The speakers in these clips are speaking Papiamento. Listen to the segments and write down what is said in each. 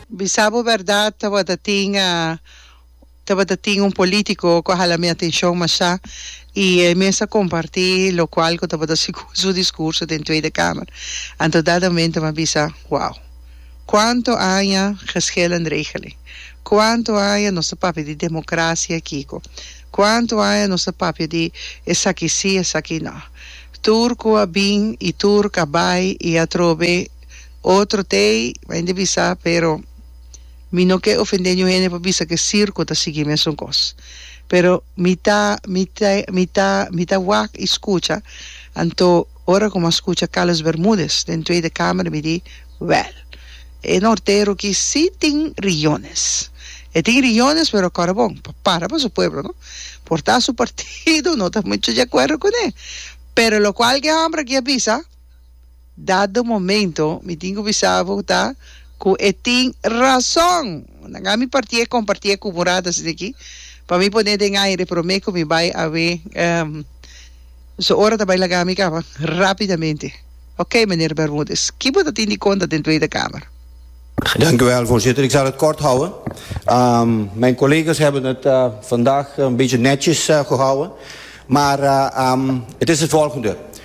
Bisa bo berdad tabata tin tabata tin un politico cu a hala mi atencion masha y e mes a comparti locual cu tabata segun su discurso den Tweede Kamer anto dat amen ta mi a bisa wow cuanto aña geschil en regeling cuanto aña nos ta papia di democracia aki cu cuanto aña nos ta papia di esaki si esaki no tur cu a bin y tur cu a bay y atrobe Otro t'ey a hende bisa, pero mi no ke ofende niun hende pa bisa ke sirku ta sigui mesun kos. Pero mi ta mi ta mi ta mi ta wak y skucha, anto ora ku mi a skucha Carlos Bermudez den Tweede Kamer mi di, Wèl, e nortero ki si tin riyones. E tin riyones pero kòrda bon, pa para pa su pueblo, no? Por ta su partido no ta muchu di akuerdo kuné, pero lokual ke hòmber aki a bisa, Dado momento mi tin cu bisa bo ta cu e tin razon. Na gami partié compartié cu Morada sende aki pa mi pone den aire prome cu mi bay awe su ora ta bay lagami caba rapidamente. Ok meneer Bermudez ki bo ta tin di conta den Tweede Kamer? Dank u wel, Voorzitter. Ik zal het kort houden. Mijn collega's hebben het vandaag een beetje netjes gehouden. Maar het is het volgende.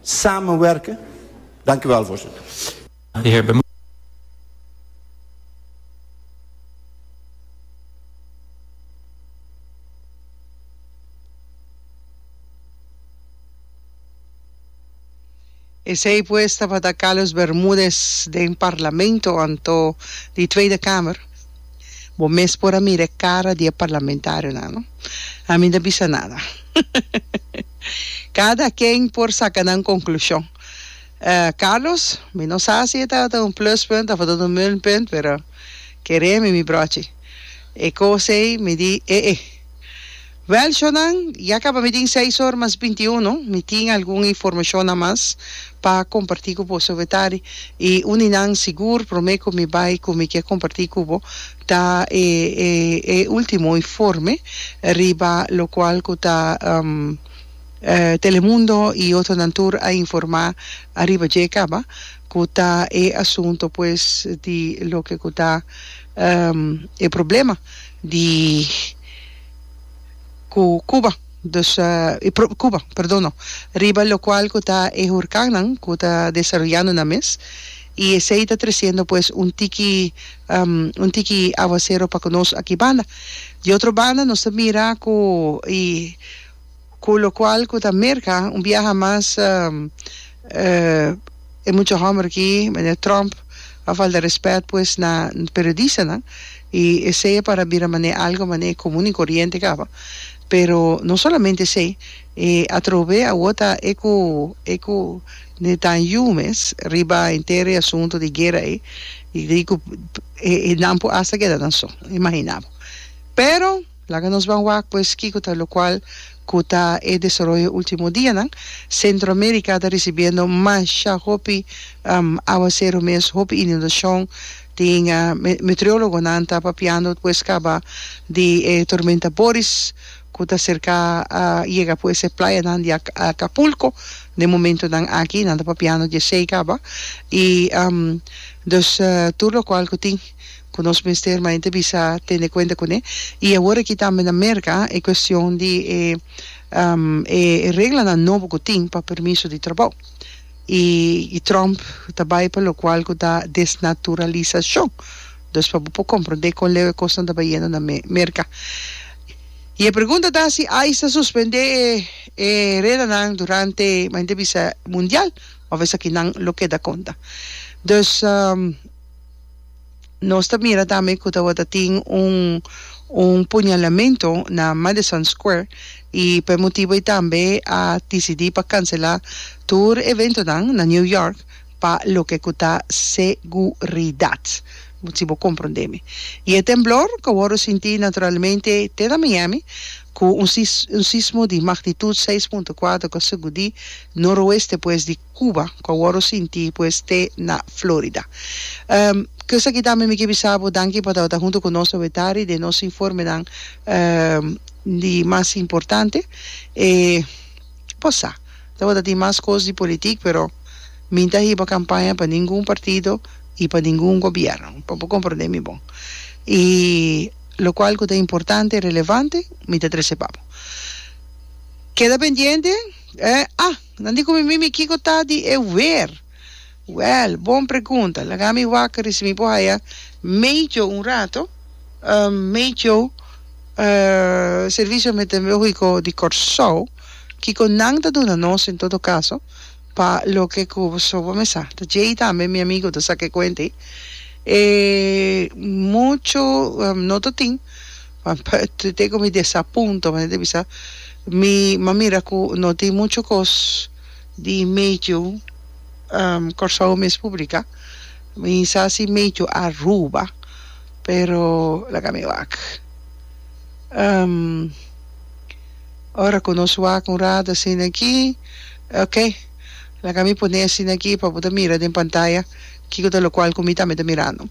samenwerken. Dank u wel, Voorzitter. De heer Bemon. Esei pues tabata Carlos Bermudez den Parlamento anto di Tweede Kamer. Bo mes por a mira e cara di e parlamentarionan, no? A mi no a bisa nada. Cada ken por saca nan conclusion. Carlos, mi no sa si e ta un pluspunt of a ta un minpunt, pero keré mi mi brochi. E cos ey mi di, eh eh. Wel, Shonan, ya kaba mi tin seis or mas binti i uno. Mi tin algun informashonnan mas pa kompartí ku boso wetari. I un di nan sigur promé ku mi bai ku mi ke kompartí ku bo ta e e último informe riba lokual ku ta Telemundo i otronan tur a informá ariba dje kaba, ku ta e asunto pues di loke ku ta e problema di. ku Cuba dus e propi Cuba perdon no riba lokual ku ta e hurkannan ku ta desaroyando nan mes i esei ta tresiendo pues un tiki un tiki aguasero pa ku nos aki banda di otro banda nos ta mira ku e Cu locual cu ta Merca un biaha mas e mucha homber aki, meneer Trump, a falta respet pues na periodistanan y esey a para bira mane algo mane comun y coriente caba. Pero no solamente esey, e atrobe awo ta e cu e cu Netanyu mes riba enter e asunto di guera ey y di cu e nan por hasta keda nan so, imagina bo. Pero. Laga nos ban wak pues kiko ta locual cu ta e desaroyo ultimo dianan. Centro America ta ricibiendo masha hopi aguacero mes, hopi inundacion. Tin meteorologonan ta papiando pues caba di e tormenta Boris cu ta cerca yega pues e playanan di Acapulco den momentonan aki. Nan ta papiando di esey caba y dus tur locual cu tin. ku nos mester mainta bisa tende kuenta kuné. I awor aki tambe na Merka e kuestion di e e reglanan nobo ku tin pa permiso di trabou i i Trump ta bai pa lokual ku ta desnaturalisashon dus pa bo por komprondé kon leu e kosnan ta bayendo na Me Merka. I e pregunta ta si ice ta suspendé e e reglanan durante mainta bisa mundial òf esakinan lo keda konta. Dus. Nos ta mira tambe cu tabata tin un un puñalamento na Madison Square y p'e motibo ei tambe a dicidi pa cancela tur eventonan na New York pa loke cu ta seguridad. Si bo comprende mi. Y e temblor cu a worde sinti naturalmente te na Miami cu un un sismo di magnitud seis punto cuater cu a sacudi noroeste pues di Cuba, cu a worde sinti pues te na Florida. Ehm, cusaki tambe mi ke bisa bo danki pa tabata hunto cu nos Obetari den nos informenan, ehm, di mas importante. E por sa, tabata tin mas cos di politic, pero mi n'ta hiba campaña pa ningun partido y pa ningun gobierno, pa bo comprende mi bon. Y locual cu ta importante, relevante, mi ta trece pa bo. Keda pendiente, eh, ah! Nan di ku mi mimi, Kiko ta di e wer? Wèl, bon pregunta. Laga mi wak risi mi por haya medio un rato, medio servicio meteorológico di Kòrsou, kiko nan ta duna nos en todo kaso pa loke ku paso pa mesa. Ta djei tambe mi amigo ta sa ke kuent ei. E muchu noto tin. Teken mi desapunta pasobra mi ta bisa mi m'a mira ku no tin muchu kos di medio Kòrsou mes publiká. Mi sa si medio Aruba pero laga mi wak. Ora ku nos wak un ratu asina aki oke laga mi pone asina aki pa bo ta mira den pantaya kiko ta lokual ku mi tambe ta mirando.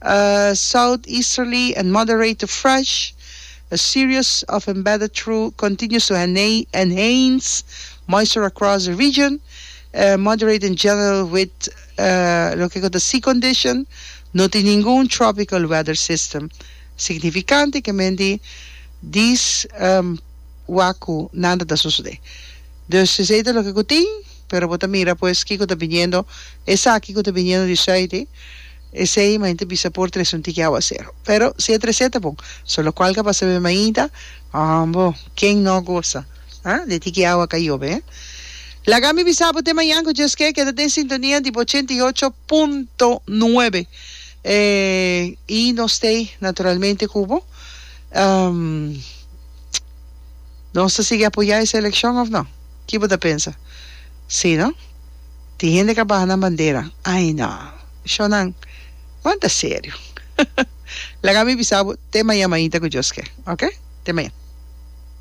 A south easterly and moderate to fresh, a series of embedded through continuous to enhanced moisture across the region, moderate in general with loke ku ta sea condition, no tin ningun tropical weather system signifikante ke men di dis waku nada ta sosode. Dus esei ta loke ku tin, pero bo ta mira pues kiko ta biniendo, esaki ku ta biniendo di sùit i. Esei main ta bisa por tres un tiki aguasero. Pero si e trese ta bon, so locual ca pasa be mainta, hombo, ken no a gosa, ah, de tiki agua ca yobe, eh? Laga mi bisa bo te mañan cu dje skè keda den sintonia di bo ochenta i ocho punto nuebe, eh, y nos stay naturalmente cu bo. Ehm, nos ta sigui apoya e seleccion of no? Ki bo ta pensa? Si no? Tin hende ca baha nan bandera, ay no! Shonnan, Wanta e serio. Laga mi bisa bo te maña mañita ku Dios ke, oke? Te maña.